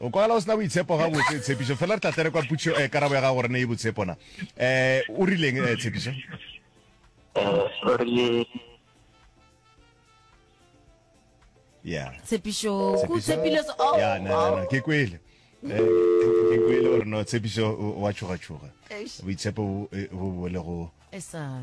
O kwagala o se na boitshepo gabotse, Tshepišo. Fela re tla tlere kwa putšo, eh, karabo ya gago gore ne e botshepo na. Eh, o rileng, eh, Tshepišo? Eh, o rile Yeah. tshepišo ko Tshepišo- tshepile se- oh, Yeah, no, no, no, oh. ke kwele Eh, ke kwele gore no tshepišo o- wa tšhogatšhoga Eish. boitshepo bo- eh, bo bole go Esa.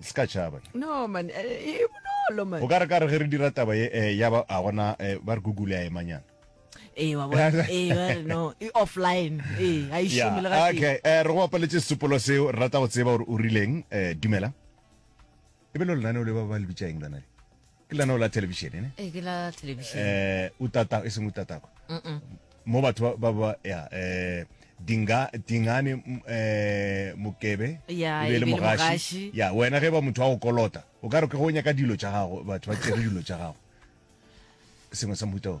se ka tšhaba no man e e bonolo man o ka re ka re ge re dira taba ye eh, ya ba a gona eh, ba re google a emanyana ee wa bona ee ba re no e offline ee ga e Yeah, šome le ga teng okay eh, re go bapaletše sesupolo seo re rata go tseba gore o rileng eh, dumela e be le lenaneo le ba ba le bitša eng lona le ke lana o la television ene e ke la television eh utata e seng utata kwa mo batho ba ba ya eh dinga dingane mm, eh mokebe Ya, e be e le be le mogashi mogashi. ya wena ge ba motho wa go kolota o ka re ke go nyaka dilo tša gago batho ba tsere dilo tša gago sengwe sa mohuta o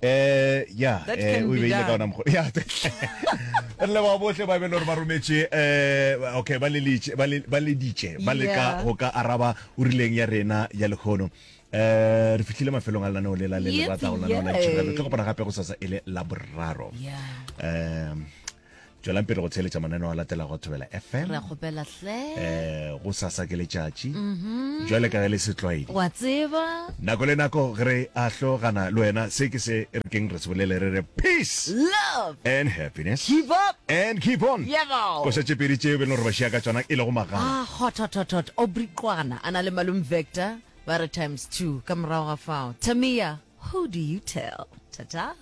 Eh, ya That eh, can o e be beile ka done. ona mokgwa ya re leboga bohle ba e be le gore ba rometše um okay ba lelitše- ba le- ba leditše ba leka Yeah. go ka araba o rileng ya rena ya lekgono um re fitlhile mafelong a lenaneo lela le le Yep, rata go lenaneo la yeah. ditšhirelo tlo kopana gape go sasa e le la boraro Yeah. um tšwelang pele go theeletša mananeo a latelago thobela fm re a kgopela hle um go sasa ke letšatši mhm. jwale ka ge le setlwaedi wa tseba nako le nako ge re a hlogana le wena se ke se re keng re se bolele re re peace love and happiness keep up and keep on ko šetše pedi tšeo be le gore ba šia ka tsona e lego magana ah, hothototot obriqwana a na le malum vector ba re times two ka morago ga fao tamia who do you tell ta-ta